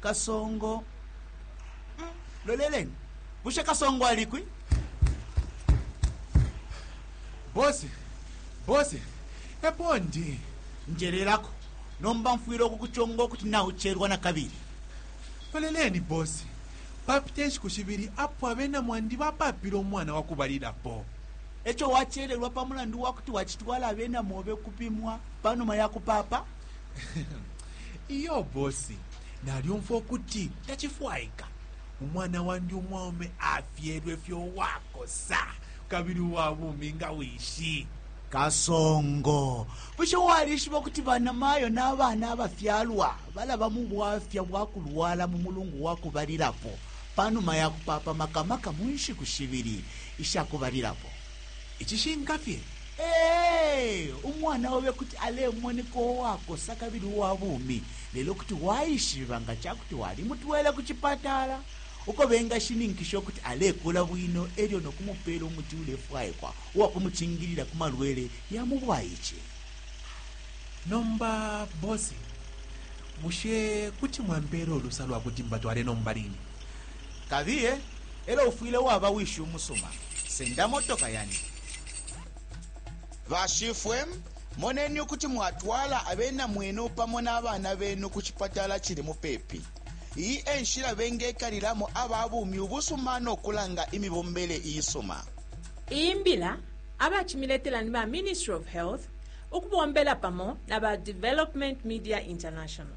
kasongo mm, loleleni bushe kasongo alikwi bosi bosi epo ndi njelelako nomba mfwile okukuconga okuti naucherwa na kabili loleleni bosi papita enshiku shibili apo abena mwandi bapapile omwana wakubalilapo eco wachererwa pa mulandu wakuti wacitwala abena mobe kupimwa panuma ya kupapa iyo bosi nalyumfwa ukuti tacifwaika umwana wandi umwaume afyelwe fye uwakosa kabili uwa bumi nga wishi kasongo bushe walishiba kuti banamayo n'abana abafyalwa balaba mu bwafya bwa kulwala mu mulungu wa kubalilapo panuma ya kupapa makamaka mu nshiku shibili isha kubalilapo Icishinka fye, ee, umwana obe kuti alemoneka uwakosa kabili uwa bumi, lelo kuti waishiba nga ca kuti walimutwele ku cipatala uko bengashininkisha ukuti alekula bwino e lyo no kumupeela umuti ulefwaikwa uwa kumucingilila ku malwele ya mu bwaice. Nomba bosi, bushe kuti mwampeela ulusa lwa kuti mbatwale nomba line? Kabiye, elo ufwile waba wishi umusuma. Senda motoka yandi. Bashifwe, moneni ukuti mwatwala abena mwenu pamo na bana benu ku cipatala cili mupepi. Iyi e nshila bengekalilamo aba bumi ubusuma no kulanga imibombele iisuma. Iyi mbila abacimiletela ni ba Ministry of Health ukubombela pamo na ba Development Media International.